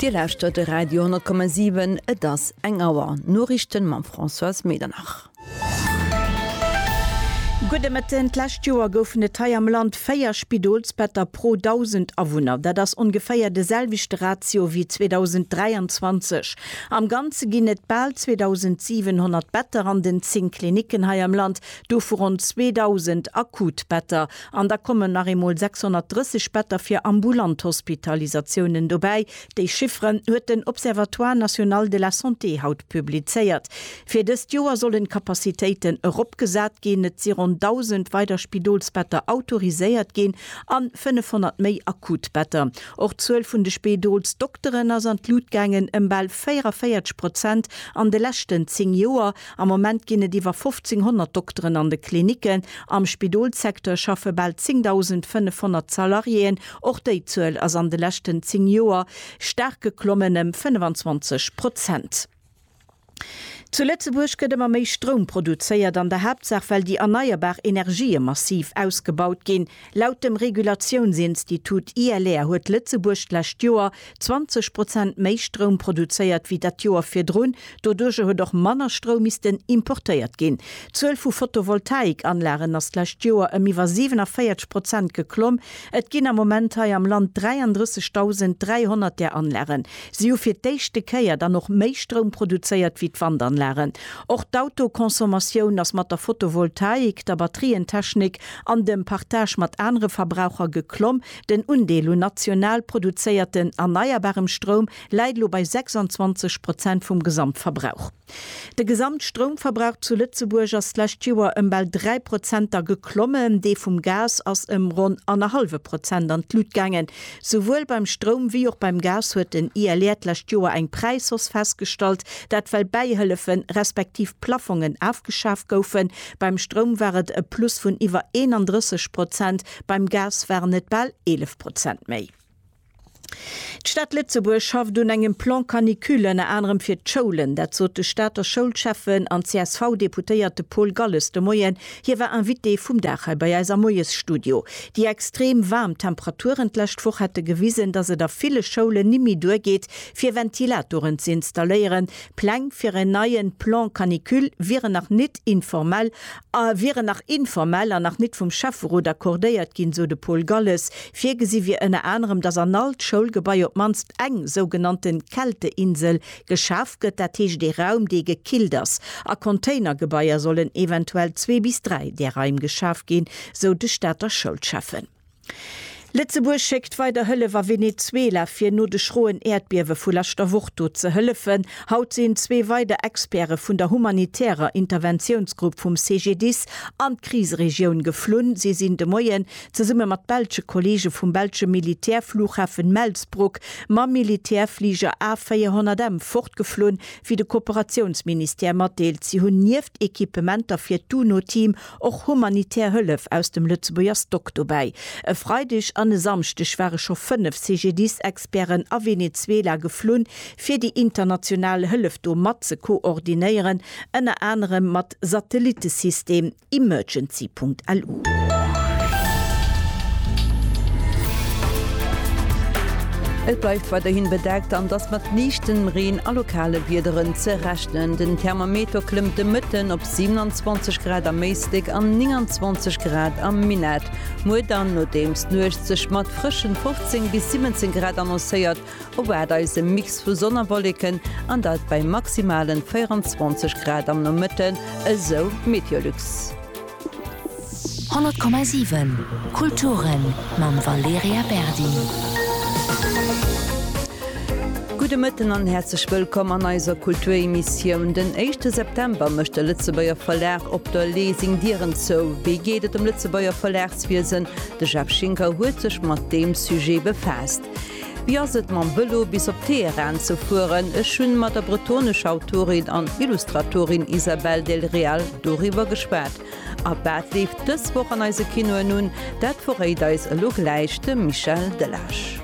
Dir lauschtert de Radio 10,7. Et ass eng Auer Noriichten mam Françoise Medernach. Gudde Mëtten. D'lescht Joer goufen et hei am Land 4 Spidolsbetter pro 1.000 Awunner. Dat ass ongeféier de selwechte Ratio wéi 2023. Am Ganze ginn et bal 2.700 Better an den 10 Klinicken hei am Land, dovu ronn 2.000 Akutbetter. An da kommen nach eemol 630 Better fir ambulant Hospitalisatiounen dobäi. Déi Chifferen huet den Observatoire national de la santé haut publizéiert. Fir dëst Joer sollen d'Capacitéiten eropgesat ginn. Et si ronn 1.000 weider Spidolsbetter autoriséiert ginn a 500 méi akut Better. Och d'Zuel vun de Spedolsdokteren ass an d'Lut gaangen, ëm bal 44 Prozent an de leschten 10 Joer. Am Moment ginn et iwwer 1.500 Dokteren an de Klinicken. Am Spidolssecteur schaffe bal 10.500 Salariéen. Och déi Zuel ass an de leschten 10 Joer staark geklommen, ëm 25 Prozent. Zu Lëtzebuerg gëtt ëmmer méi Stroum produzéiert, an der Haaptsaach well déi erneierbar Energië massiv ausgebaut ginn. Laut dem Regulatiounsinstitut ILR huet Lëtzebuerg d'lescht Joer 20 Prozent méi Stroum produzéiert wéi dat Joer virdrun. Doduerjer huet och manner Stroum missten importéiert ginn. D'Zuel vu Photovoltaikanlagen ass d'lescht Joer ëm iwwer 47 Prozent geklomm. Et ginn am Moment hei am Land 33.300 där Anlagen. Si hu fir d'éischte Kéier dann och méi Stroum produzéiert wéi d'Wandanlagen. Och d'Autoconsommatioun ass mat der Photovoltaik, der Batterientechnik an dem Partage mat anere Verbraucher geklomm, den Undeel un national produzéierten erneierbarem Stroum läit elo bei 26 Prozent vum Gesamtverbrauch. De Gesamtstroumverbrauch zu Lëtzebuerg ass d'lescht Joer ëm bal 3 Prozenter geklommen, dee vum Gas ass ëm ronn annerhallwe Prozent an d'Lut gaangen. Souwuel beim Stroum wéi och beim Gas huet den ILR d'lescht Joer eng Präishausse festgestallt, dat well Bäihëllefen, respektiv Plaffongen afgeschaaft goufen, Beim Stroum war et e Plus vun iwwer 31 Prozent, beim Gas waren et bal 11 Prozent méi. D'Stad Lëtzebuerg schafft un engem Plan canicule, ënner anerem fir d'Schoulen. Dat sot de Stater Schoulschäffen an CSV-Deputéierte Paul Galles de Moien. Hie war Invité vum Dag hei bei eis am Moiesstudio. Déi extrem waarm Temperaturen d'lescht Woch hätte gewisen, datt et a ville Schoulen ni méi duergeet, fir Ventilatoren ze installéieren, D'Pläng fir en neien Plan canicule wieren nach nit informell a wieren nach informell an nach nit vum Schäfferot accordéiert ginn, sou de Paul Galles. Virgesi wier ënner anerem, dass an all d'Schoulgebai op d'mannst eng sougenannte Kälteinsel geschaf gëtt, dat heescht ee Raum, dee gekillt ass. A Containergebaier sollen eventuell zwee bis dräi där Raim geschaf ginn, sou de Stater Schoulschäffen. Lëtzebuerg schéckt weider Hëllef a Venezuela, fir no de schroen Äerdbiewe vu leschter Woch do ze hëllefen. Haut sinn zwee weider Experte vun der humanitärer Interventiounsgrupp vum CGDIS an d'Kriseregioun geflunn. Si sinn de Moien zesumme mat belsche Kollege vum belsche Militärflughafen Melsbroek mam Militärfliger A400M fortgeflunn, wéi de Kooperatiounsministère matdeelt. Si hunn nieft Equipementer fir d'UNO-Team Och humanitär Hëllef aus dem Lëtzebuerger Stock dobäi. E Freideg an e Samschdeg ware scho fënnef CGDIS-Experten a Venezuela geflunn, fir déi international Hëllef do mat ze koordinéieren, ënner anerem mat Satellittesystem Emergency.lu. Et bleift weiderhin bedeckt an et ass mat liichtem Reen a lokale Wiederen ze rechnen. Den Thermometer klëmmt de Mëtten op 27 Grad am Méistek an 29 Grad am Minett. Muer dann, nodeems d'Nuecht sech mat frëschen 15 bis 17 Grad annoncéiert, erwaart eis e Mix vu Sonn a Wolleken, an dat bei maximalen 24 Grad am Nomëtten, esou Meteolux. 100,7 Kulturen mam Valerija Berdi. Gudde Mëtten an häerzlech wëllkomm an eiser Kulturemissioun. Den éischte September mécht de Lëtzebuerger Verlag Op der Lee seng Dieren zou. Wéi geet et dem Lëtzebuerger Verlagswiesen? De Jeff Schinker huet sech mat deem Sujet befaasst. Wéi ass et mam Vëlo bis op Teheran ze fueren? Ech hunn mat der bretonesch Autorin an Illustratorin Isabelle Del Real doriwwer geschwat. A wat leeft dës Woch an eise Kinoen un? Dat verréit eis elo gläich de Michel Delage.